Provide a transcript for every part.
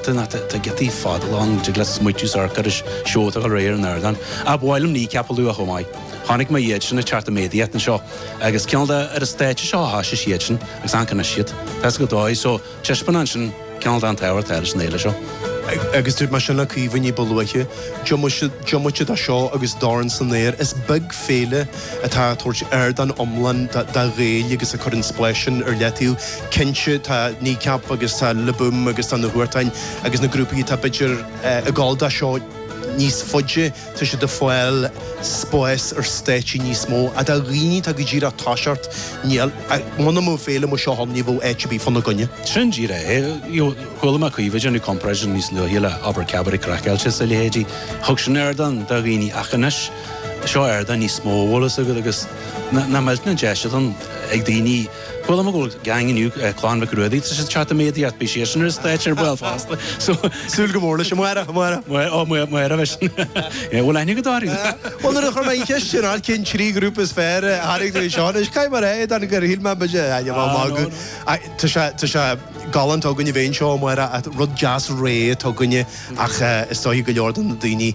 Tá giotaí fada lán de ghlios smaoitiús arcaicis seolta dho réir an airdáin. Ab áil liom Kneecap a lua chomh maith. Chonaic mé iad sin ag teacht i méadaíocht anseo, agus cinnte ar an stáitse seo a thosaigh siad sin, agus ann conas siad, tá 's go dáigh, so taispeánann sin cinnte an tábhacht atá leis an fhéile seo. Agus dúirt mé sin le Caoimhe ní ba luaithe, diomaite de seo agus Dorn San Aer, is beag féile atá ag tabhairt ardán iomlán do Ghaeil agus ag cur an spláis sin ar leataobh. Cinnte, tá Kneecap agus tá Le Boom agus tá na Huartáin agus na grúpaí atá, b'fhéidir, ag dul dó seo níos faide, tá siad ag fáil spáis ar stáitsí níos mó, ach do dhaoine atá go díreach, ag tosacht, níl, muna mbeadh féile mar seo ann, ní bheadh áit ar bith fá na gcoinne. Sin díreach é. Chuala mé Caoimhe ag déanamh comparison níos luaithe le, abair, Cabaret Craiceáilte is a leithéidí. Thug sin ardán do dhaoine ach anois, seo ardán níos mó bhfuil fhios agat agus nach mbeadh na deiseanna ag daoine bhuel am go bhfuil gang inniu clann Mhic Ruairí tá siad ag teacht i méadaíocht beidh siadsan ar stáitse ar ball fosta so súil go mór leis Máire Máire Máire Máire bheith sin é bhfuil aine go dáirí bhfuil ar chum í ceist sin ar cinn trí grúpa is fér airigh tú seán is cai mar é an gur híil me be sé aine má má go tá sé tá sé galánta againne bhéin seo mar an rud deas ré tá againne ach is dócha go leor de na daoine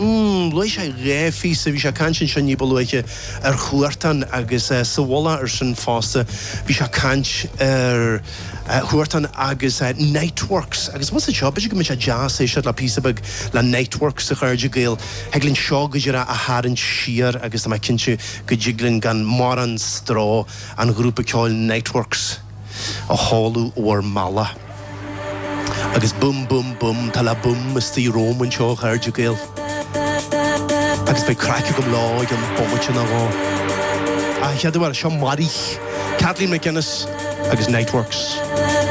Umm, luaigh sé dhá phíosa, bhí sé ag caint anseo ní ba luaithe, ar Huartan agus sa mhullach air sin fosta bhí sé ag caint ar Huartan agus Niteworks agus b'fhusa seo b'fhéidir go mbeadh sé deas éisteacht le píosa beag le Niteworks a chairde Gael, thig linn seo go díreach a tharraingt siar agus tá mé cinnte go dtig linn gan mórán stró an grúpa ceoil Niteworks. a sheoladh in bhur mbealach. Agus bum bum bum tá Le Boom istigh romham anseo a chairde Gael. Agus beidh craic agam leo i gceann bomaite nó dhó. Ach a chéaduair, seo Maraiche, Kathleen MacInnes agus Niteworks.